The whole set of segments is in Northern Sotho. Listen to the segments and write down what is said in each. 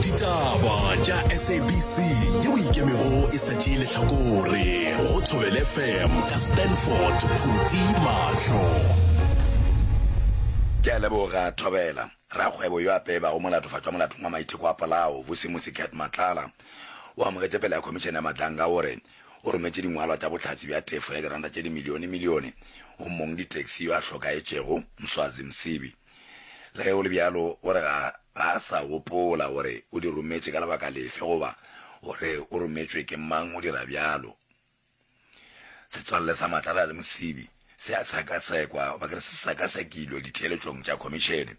ditaba tša sabc yeo e ikemego e sa tšee lehlakore go thobele fm ka stanford phuti mahlo ke a leboga thobela rakgwebo yo a pebago molatofatšo wa molatong wa maitheko a polao vusimusi cat matlala o amogetše pele ya khomišene ya matlanga o re o rometše dingwalwa tša bohlatse bja tefo ya diranta tše dimilione milione go mong ditaxi yo a hlokaetšego mswazi msibi Le ge go le bjalo, o re ga a sa gopola gore o di rometše ka lebaka lefe goba gore o rometšwe ke mang. O dira bjalo. Setswalle sa Matlala le Mosibi se a sekasekwa, goba ke re se sekasekilwe ditheeletšong tša khomišene.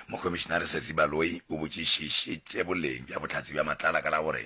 Mokhomišenare Sesi Baloyi o botšišišitše boleng bja bohlatse bja Matlala ka la gore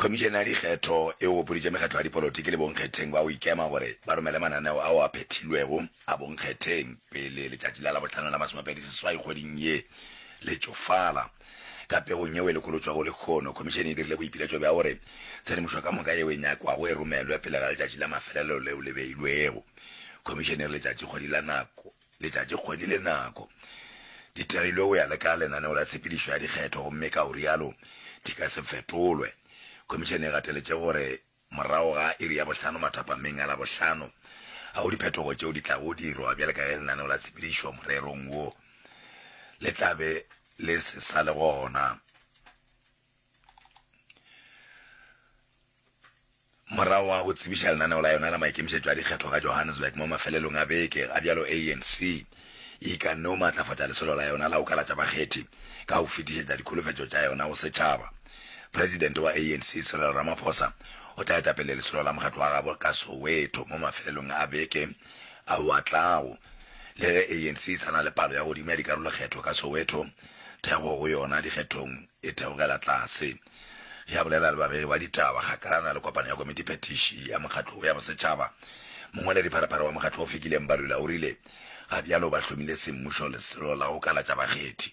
khomišene ya dikgetho e opoditše mekgatlo ya dipolotiki le bonkgetheng ba o ikema gore ba romele mananeo ao a phethilwego a bonkgetheng pele letšatši la labohlano la masomepedi seswai kgweding ye le tšofala Ka pegong yeo e lokolotšwago lekhono, Khomišene e dirile boipiletšo bja gore tshedimošo ka moka yeo e nyakwago e romelwe pele ga letšatši la mafelelo leo le beilwego. Khomišene e re letšatšikgwedi la nako, letšatšikgwedi le nako di terilwe go ya le ka lenaneo la tshepedišo ya dikgetho gomme ka go rialo di ka se fetolwe. Khomišene e gateletše gore morago ga iri ya bohlano mathapameng a Labohlano ga go diphetogo tšeo di tlago dirwa bjale ka ge lenaneo la tshepedišo morerong wo le tla be le se sa le gona. Morago ga go tsebiša lenaneo la yona la maikemišetšo a dikgetho ka Johannesburg mo mafelelong a beke, ga bjalo ANC e ikanne go maatlafatša lesolo la yona la go kalatša bakgethi ka go fetišetša dikholofetšo tša yona go setšhaba. Presidente wa ANC, Cyril Ramaphosa, o tla eta pele lesolo la mokgatlo wa gabo ka Soweto mo mafelelong a beke. a o a tlago. Le ge ANC e sa na le palo ya godimo ya dikarolokgetho ka Soweto, thekgo go yona dikgethong e theogela tlase. Ge a bolela le babegi ba ditaba kgakalana le kopano ya komiti phetiši ya mokgatlo wo ya bosetšhaba, mongwaledi-pharephare wa mokgatlo wo Fikile Mbalula o rile ga bjalo ba hlomile semmušo lesolo la go kalatša bakgethi.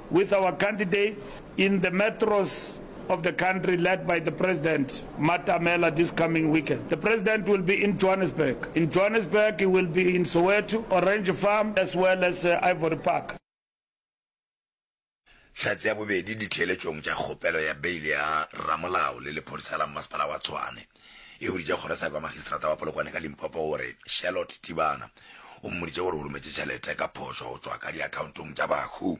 with our candidates in the metros of the country led by the President Matamela this coming weekend. The President will be in Johannesburg. In Johannesburg, he will be in Soweto, Orange Farm, as well as uh, Ivory Park. hlatse ya bobedi ditheeletšong tša kgopelo ya beile ya ramolao le lephodisa la mmasepala wa tshwane E boditše kgorosabe wa magistrata wa Polokwane ka Limpopo gore Charlotte Tibana o mmoditše gore o rometše tšhelete ka phošo go tšwa ka diakhaontong tša bahu.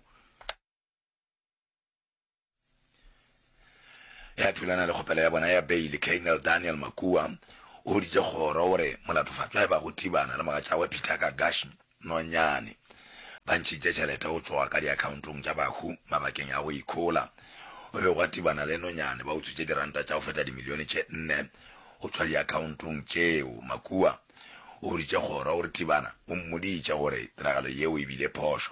Ya thulana le kgopelo ya bona ya beile, Colonel Daniel Makua o boditše kgoro gore molatofatšwa e bago Tibana le mogatšagwe Peter Kagashi nonyane. Ba ntšhitše tšhelete go tšwa ka diakhaontong tša bahu mabakeng a go ikhola. Go be gwa tibana le nonyane, ba utswitše diranta tša go feta dimilione tše nne go tšwa diakhaontong tšeo. Makua o boditše kgoro gore Tibana o mmoditše gore tiragalo yeo e bile phošo.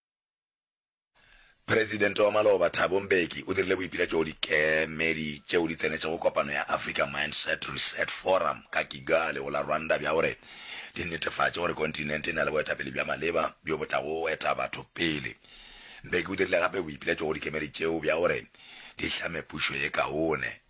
Presidente wa maloba Thabo Mbeki o dirile boipiletšo go dikemedi tšeo di tsenetšego kopano ya Africa Mindset Reset Forum ka Kigali go la Rwanda bja gore di netefatše gore kontinente e na le boetapele bja maleba bjo bo tlago eta batho pele. Mbeki o dirile gape boipiletšo go dikemedi tšeo bja gore di hlame pušo ye kaone.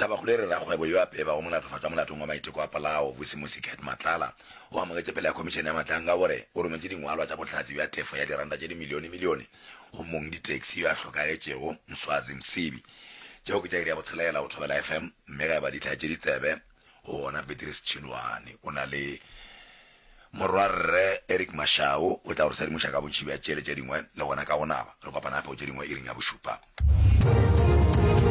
Tabakgolo e re rakgwebo yo a peba o molato fatwa molatong wa maiteko a polao, Vusimusi Gert Matlala, o amogetše pele ga Khomišene ya Matlanka gore o rometše dingwalwa tša bohlatse bja tefo ya diranta tše dimilionemilione go mong ditaxi yo a hlokagetšego, Mswazi Msibi. Tšeo ke tša iri ya botshelela go Thobela FM mme ge a ba dihlaa tše ditsebe go wona Beatrice Tšhiloane o na le Morwarre Eric Mashau o tla go re sedimoša ka bontši bja tšele tše dingwe le gona ka go naba. Re kopana gape go tše dingwe iring ya bošupa.